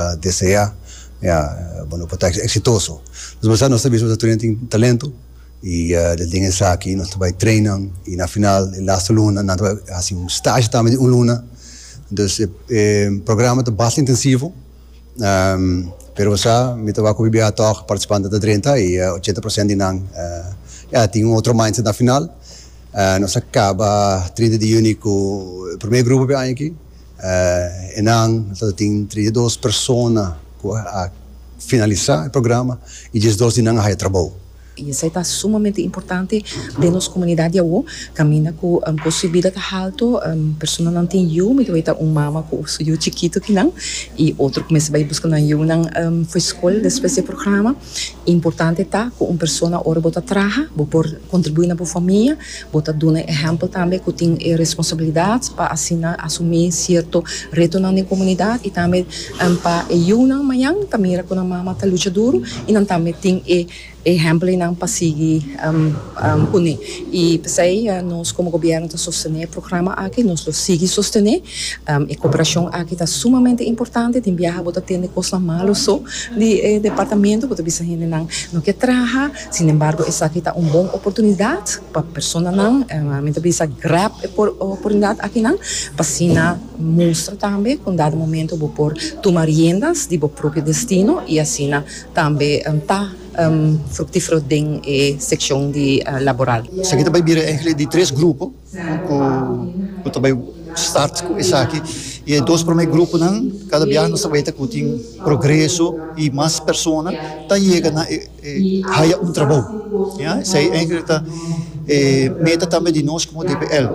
Ta desea mea bo lo por ta exitoso. Nos bo sa, nos ta bisa bo ta tur y nan tin talento y den tin esaki nos ta bay train nan y na final e laste luna nan ta bay haci un stage tambe di un luna. Entonces e programa ta basta intensivo pero bo sa mi ta wak cu BBH Talk participantenan ta drenta y ochenta procent di nan ya a tin un otro mindset na final. Nos a caba trinta di juni cu e primer grupo p'e aña aki. Enan ta tin treinta i dos persona ku a finalisá e programa i diesdos di nan a haya trabou. I esei ta sumamente importante den nos komunidat di awo kaminda ku kost di bida ta haltu, personanan tin yu, mi ta weta un mama ku su yu chikitu kinan i otro ku mester bai buska nan yunan for skol despues di e programa. Importante ta ku un persona ora bo ta traha bo por kontribuí na bo famia, bo ta duna e ehèmpel tambe ku tin e responsabilidat pa asina asumí sierto retonan den komunidat i tambe pa e yunan mañan ta mira ku nan mama ta lucha duru i nan tambe tin e ehèmpel einan pa sigui pone. I p'esei nos komo gobièrnu ta sostené e programa aki, nos lo sigui sostené. E koperashon aki ta sumamente importante. Tin biaha bo ta tende kosnan malu so di e departamentu, bo ta bisa hendenan no ke traha. Sin embargo esaki ta un bon oportunidat pa personanan, mi ta bisa grab e oportunidat akinan pa asina mustra tambe ku un dado momento bo por tuma riendas di bo propio destino i asina tambe ta fruktífero den e sekshon di laboral. Esaki ta bai bira enkele di tres grupo ku ta bai start ku esaki i e dos promé gruponan kada biaha nos ta bai ta ku tin progreso i mas persona ta yega na e haya un trabou. Esei enkele ta e meta tambe di nos komo DPL.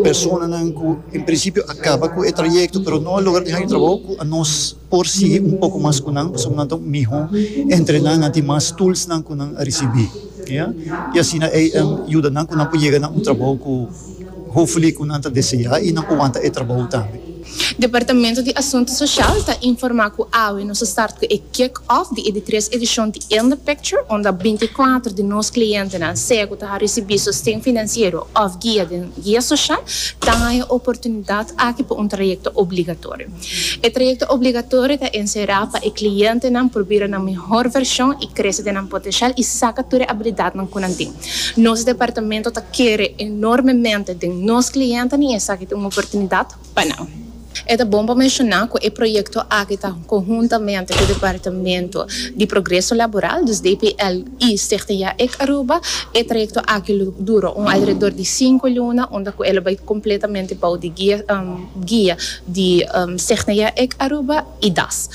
Personanan ku en prinsipio a kaba ku e trayekto pero no a logra tin haya un trabou ku a nos. por sigui un poko mas ku nan pasobra nan ta un mihó entrená nan tin mas toolsnan ku nan a risibí ya i asina ei a yuda nan ku nan por yega na un trabou ku hopefully ku nan ta deseá i nan por wanta e trabou tambe. Departamento di Asuntu Soshal ta informá ku awe nos a start ku e kick off di e di tres edishon di In The Picture unda binti i kuater di nos klientenan sea ku ta a risibí sosten finansiero òf guia den guia soshal ta haña e oportunidat aki pa un trayekto obligatorio. E trayecto obligatorio ta encerá pa e clientenan por bira nan mihor version y crece den nan potencial y saca tur e habilidadnan cu nan tin. Nos departamento ta kere enormemente den nos clientnan y esaki ta un oportunidad pa nan. E ta bon pa menciona cu e proyecto aki ta conhuntamente cu Departamento di Progreso Laboral, dus DPL, y Stichting Yaec Aruba. E trayecto aki lo duro un alrededor di cinco luna unda cu e lo bay completamente bou di guia. guia di Cgna ec Aruba y das.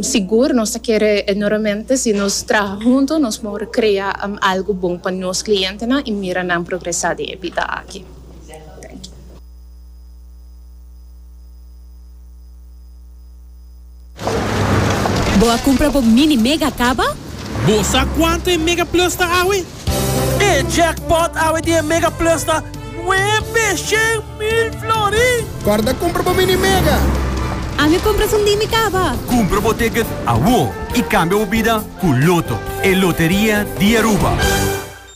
Sigur nos ta kere enormemente si nos traha hunto nos por crea algo bon pa nos clientenan y mira nan progresa den e bida aki. Thank you. Bo a cumpra bo mini mega caba? Bo sa cuanto e mega plus ta awe? E jackpot awe di e mega plus ta nuebe shen mil florin! Corda cumpra bo mini mega! Ami cumpra su ndi mi caba! Cumpra bo ticket awor y cambia bo bida cu Lotto, e loteria di Aruba!